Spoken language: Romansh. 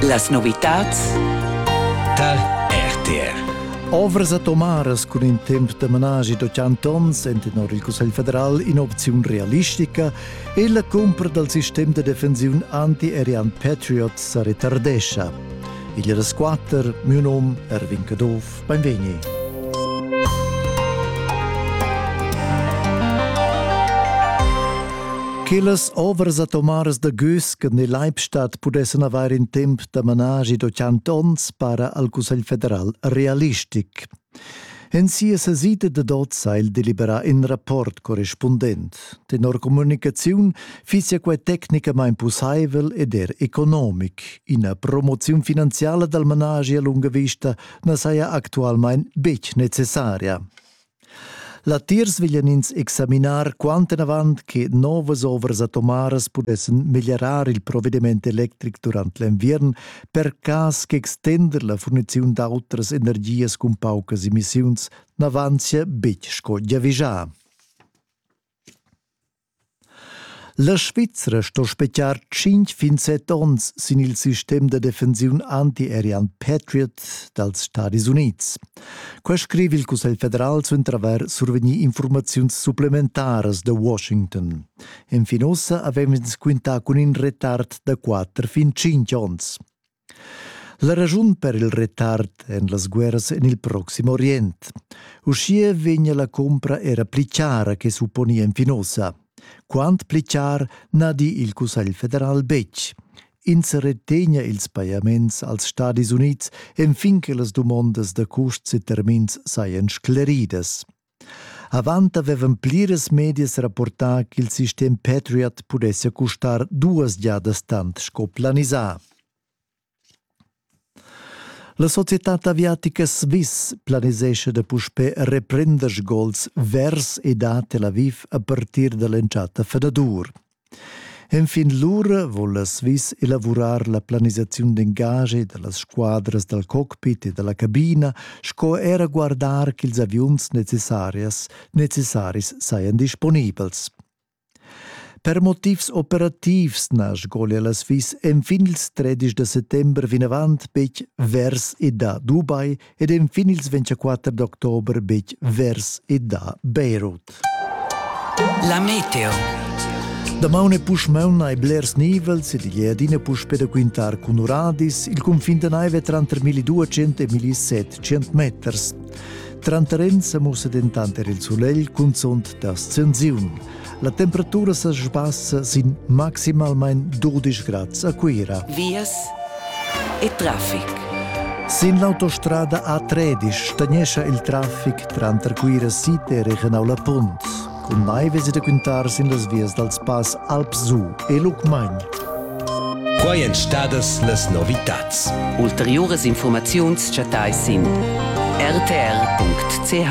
Las novitads tar RTR. Ovras atomaras cun in temp da managi d'ottanta onns en tenor il Cussegl federal in'opziun realistica e la cumpra dal sistem da defensiun anti-aerian Patriot sa retardescha. Il resquatter, miu num Erwin Caduff. Beinvegni. Quellas ovras atomaras da Güsken e Leibstadt pudessen avair in temp da managi da cent onns para al Cussegl federal realistic. En sia sesida de Dotz ha il deliberà in rapport correspondent. Tenor comunicaziun fisia quei tecnicamain pussaivel ed er economic. Ina promoziun finanziala dal managi a lunga vista na saja actualmain betg necessaria. Latiers veglian ins examinar quantenavant che novas ovras atomaras pudessan meglierar il provediment electric durant l'enviern per cas ch'extender la furniziun d'autras energias cun paucas emissiuns n'avanzia betg sco giavischà. La Svizra sto spetgar tschintg fin set onns sin il sistem da defensiun antiaerian Patriot dals Stadis Unids. Quai scriva il Cussegl federal suenter avair survegnì informaziuns supplementaras da Washington. Enfin ussa avev'ins quintà cun in retard da quatter fin tschintg onns. La raschun per il retard en las guerras en il Proxim Orient. Uschia vegnia la compra era pli chara che supponia en Finosa. Quant pli char na di il Cussegl federal betg. Ins retegna ils pajaments als Stadis Unids enfin che las dumondas da custs e termins sajan scleridas. Avant avevan pliras medias rapportà ch'il sistem Patriot pudessia custar duas giadas tant sco planisà. La societad aviatica Swiss planisescha da puspè reprender sgols vers e da Tel Aviv a partir da l'entschatta fanadur. Enfin lura voul la Swiss elavurar la planisaziun d'engagi da las squadras dal cockpit e da la cabina sco era guardar ch'ils aviuns necessarias necessaris sajan disponibels. Per motivs operativs na sgolia la Swiss enfin ils 13 da settember vinavant betg vers e da Dubai ed enfin ils 24 d'october betg vers e da Beirut. La meteo. Damaun e puschmaun hai blers nivels ed igl è adina puspè da quintar cun uradis il cunfin da naive tranter 1200 e 1700 meters. Tranter ins mussa dentant er il sulegl cunzunt da scensiun. La temperatura sa sbassa sin maximalmain 12 grad a Cuira. Vias e traffic. Sin l'autostrada A13 stagnescha il traffic tranter Cuira Site e Regenau La Punt. Cun mai vesi da quintar sin las vias dal spass Alpsu e Lucmagn. Quai èn stadas las novitads. Ulteriuras informaziuns chattais sin rtr.ch.